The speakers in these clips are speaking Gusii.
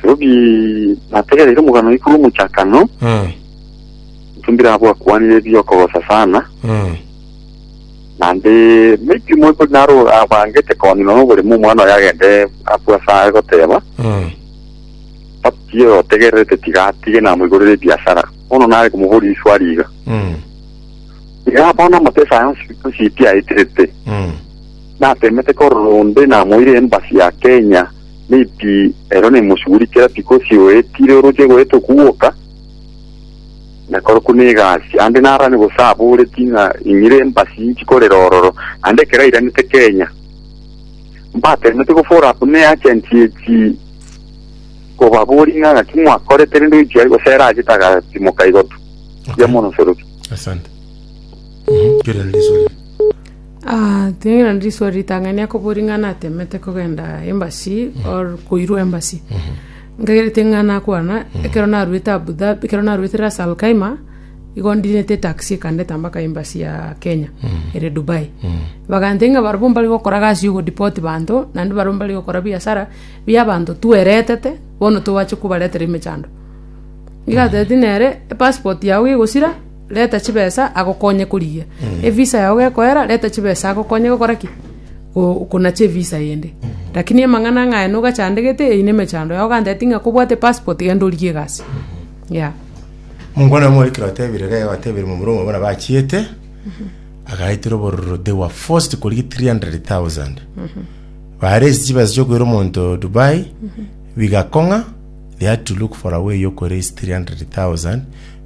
Kerobi nategereire omogano igoro omochakano, Mm. intwe mbirabwo akwanire ebi okogosa sana, Mm. naende maybe moi kori naro abangete koni nonya oboremo omwana oye agende abwo ase aye goteba, Mm. papi otegererete tiga atige namoigorere ebiasara. Bono nare komoboria riswali iga. Mm. Iga bono amapesa aya onsi onsi pi aeterete, Mm. natemete korora onde namoire embassy ya Kenya, Maybe ero nemosuguri kera tikosi oetire oroche goeta okuwoka nakore kuna egasi ande narane gose aboreti ng'a inyire embasi nchikorera ororo ande ekero airanete Kenya mbatemete go follow up ne agent echi kobabori ng'a ng'aki mwakorete rende oichia aye gose ere achete agatimoka igotu ya mono soroki Asante. Mhm. Kera risori. Ah, ting'ina ndiswa ritang'ani akobo ring'ana atemete kogenda embassy or koirwa embassy. Nkagere ting'ana akwana, ekero narwete Abu Dhabi, ekero narwete Ras Al Khaimah, igo ndinete taxi ekandeta mpaka embassy ya Kenya, ere Dubai. Bagantebia ng'a barabwo mbare gokora gasi ya ogodeport banto, naende barabwo mbare gokora biasara bia abanto tweretete, bono tobache kobaretera emechando. Iga atebeti nere, epassport yago gegosira. reta chibesa agokonye korigia evisa yao gekoera, reta chibesa agokonye gokora ki? Go- konacha evisa yende. Rakini amang'ana ng'aya nogachandegete, eyio na emechando yao, ganteti ng'a kobwate passport genda origie egasi. Yeah. Mokwana omo ekero atebire iga igo atebire momura omwe bono bachiete agaetera obororo they were forced korigia 300,000 baresi chibesa chiokoira omonto Dubai bigakong'a they had to look for a way yokoresi 300,000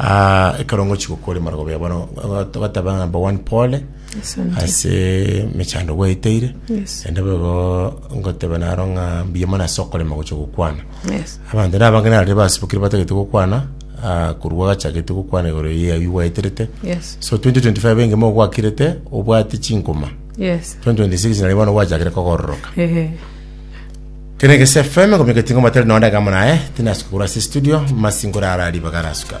Ah, ekero ngochi gokora emarogobio ya bono eh, togateba number one pole Asante. ase mechando gwaeteire Yes. ende bogo ngotebe naro ng'a mbuya mono ase okorema gocha gokwana Yes. abanto na abange narire basibokire batagete gokwana ah, korwa gachagete gokwana igoro ya iwi gwaeterete Yes. so 2025 engemo ogwakirete obwate chinkoma Yes. 2026 nari bono gwachakire kogororoka Ehe. Kene Gese FM komika etinga omatari nonde egamo naye tinasuka korwa ase studio masingore ara ribaga arasuka.